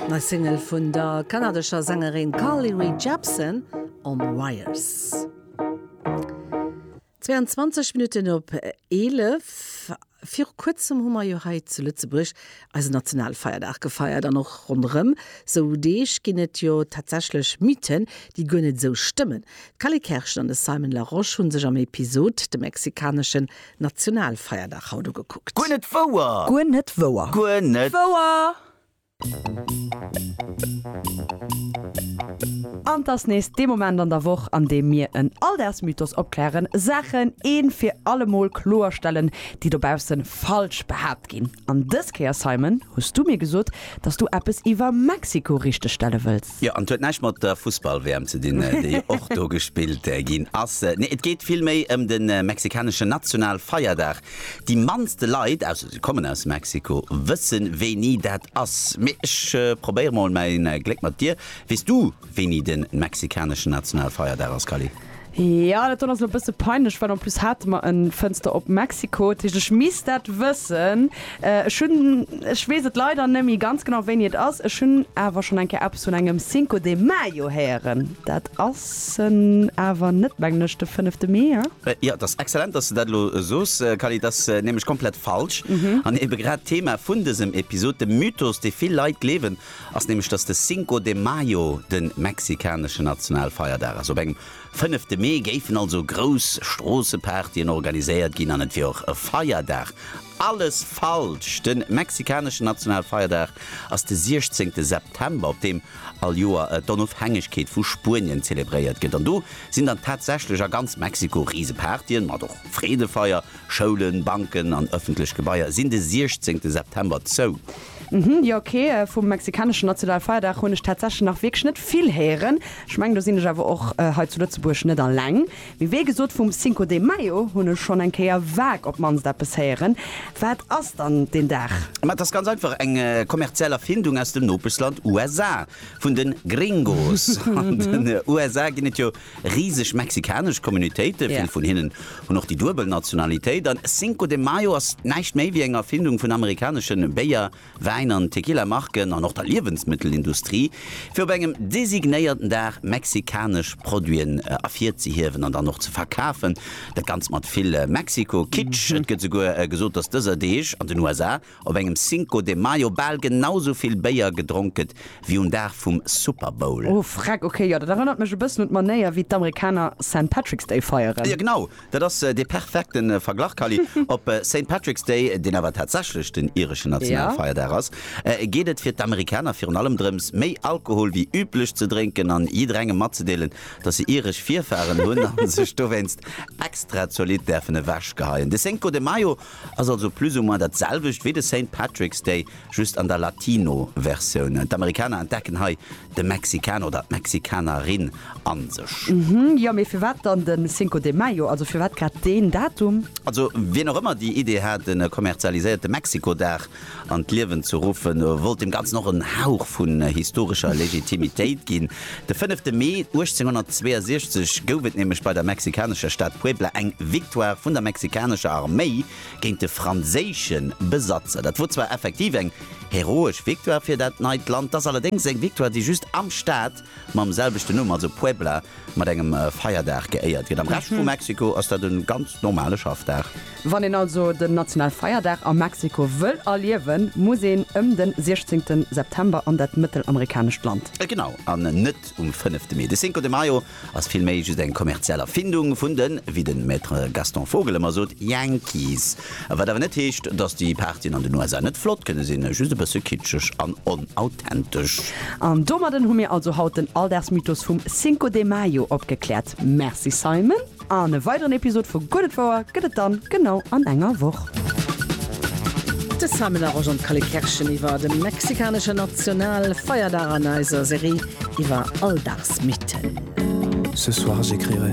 Nei Single vun der kanadescher Sängerin Carly Rae Jepsen, On Wires. 22 Minutten op 11. Viru kuerzem hu mer jo hei zu Lëtzebuerg eisen Nationalfeierdag gefeiert. An och ronderëm sou Deeg ginn et jo tatsächlech Mythen, déi guer net esou stëmmen. D'Cally Kerschen an de Simon Larosche hu sech am Episod de mexikanesche Nationalfeierdag haut ugekuckt. Guer net wouer! Guer net wouer! Guer net wouer! An 't ass nees dee Moment an der Woch, an deem mir en Alldagsmythos opklären, Saachen een fir allemol kloerstellen, déi dobausse falsch behaapt ginn. An dës Kéier, Simon, hues du mir gesot, dass du eppes iwwer Mexiko richteg stelle wëlls. Jo, an et huet näischt mat der Fussball-WM ze dinn, déi och do gespillt ginn ass. Nee, et geet vill méi ëm de mexikaneschen Nationalfeierdag. Déi mannste Leit, ausser si kommen aus Mexiko, wësse wéini dat ass. Mee ech probéiere mol mäi Gléck mat dir. Weess du, wéini de mexikaneschen Nationalfeierdag ass, Kally? Ja, dat do ass lo bësse peinlech, well en plus hate mer en Fënster op Mexiko, dat heescht ech misst dat wëssen. Ech hunn, ech weess et leider nëmme ganz genau wéini et ass, ech hunn awer schonn eng Kéier eppes vun engem Cinco de Mayo héieren. Dat ass en awer net, mengen ech, de fënnefte Mee, he? Jo, et ass exzellent, dass de dat elo soos, Kally, et ass nämlech komplett falsch an ebe grad d'Thema vun dësem Episod, de Mythos, dee vill Leit gleewen, ass nämlech, dass de Cinco de Mayo de mexikaneschen Nationalfeierdag ass. Op engem fënnefte Mee géifen also grouss Stroossepartyen organiséiert ginn an et wier och e Feierdag. Alles falsch! De mexikaneschen Nationalfeierdag ass de 16 September, op deem all Joer d'Onofhängegkeet vu Spuenien zelebréiert gëtt. An do sinn dann tatsächlech a ganz Mexiko Risepartyen, mat och Freedefeier, Schoulen, Banken an ëffentlech Gebaier sinn de 16 September zou. Hm jo ok, vum mexikaneschen Nationalfeierdag hunn ech tatsächlech nach wierklech net vill héieren. Ech mengen do sinn ech awer och hei zu Lëtzebuerg net alleng. Mee wéi gesot vum Cinco de Mayo hunn ech schonn eng Kéier vague op d'mannst eppes héieren. Wat ass dann deen Dag? Ma et ass ganz einfach eng kommerziell Erfindung aus dem Nopeschland USA vun de Gringos. An den USA ginn et jo Riseg mexikanesch Communautéite, vill vun hinnen hunn och déi duebel Nationalitéit. An Cinco de Mayo ass näischt méi wéi eng Erfindung vun amerikaneschen Béier-, Wäin an Tequila-Marken an och der Liewensmëttelindustrie, fir op engem designéierten Dag mexikanesch Produiten ervirzehiewen an dann och ze verkafen. Dat Ganzt mat vill Mexiko-Kitsch. Et gëtt esouguer gesot, dass dëser Deeg an den USA op engem Cinco de Mayo bal genau sou vill Béier gedronk gëtt wéi um Dag vum Super Bowl. Oh freck, ok, jo, dat erënnert mech e bëssen un d'Manéier wéi d'Amerikaner Saint Patrick's Day feieren. Jo genau, dat ass dee perfekte Verglach Kally. Op Saint Patrick's Day, deen awer tatsächlech den ireschen Nationalfeierdag ass, geet et fir d'Amerikaner virun allem drëms, méi Alkohol wéi üblech ze drénken an jidderengem matzedeelen, datt se iresch Virfaren hunn a sech dowéinst extra zolidd däerfen ewechgeheien. De Cinco de Mayo Ass also plus ou moins dat selwecht wéi de Saint Patrick's Day, just an der Latino Versioun. D'Amerikaner entdecken hei de Mexikaner oder d'Mexikanerin a sech. Uhmm, jo mee firwat dann den Cinco de Mayo, also firwat grad deen Datum? Also wien och ëmmer déi Idee hat, en kommerzialiséierte Mexiko-Dag an d'Liewen ze ruffen, wollt dem Ganzen och en Hauch vun historescher Legitimitéit ginn. De fënnefte Mee 1862 gouf et nämlech bei der mexikanescher Stad Puebla eng Victoire vun der mexikanescher Arméi géint de franséische Besatzer. Dat wor zwar effektiv eng heroesch Victoire fir dat neit Land, 't ass allerdéngs eng Victoire, déi just am Staat mam selwechten Numm, also Puebla, mat engem Feierdag geéiert gëtt. Am Rescht vu Mexiko ass dat e ganz normale Schaffdag. Wann een also den Nationalfeierdag a Mexiko wëll erliewen, muss een ëm de 16. September an dat mëttelamerikanescht Land. Genau, an net um fënnefte Mee. De Cinco de Mayo ass vill méi just eng kommerziell Erfindung vun den, wéi de Maître Gaston Vogel ëmmer sot, Yankees. Wat awer net heescht, dass déi Partyen an den USA net flott kënne sinn, just e bësse kitscheg an onauthentësch. An domadden hu mir also haut den Alldagsmythos vum Cinco de Mayo opgekläert. Merci Simon, an e weideren Episod vu Gutt et wouer gëtt et dann genau an enger Woch. De Simon a Roger Kalle Kerschen iwwer de mexikaneschen National Feierdag an eiser Serie iwwer Alldagsmythen. Ce soir j'écrirai.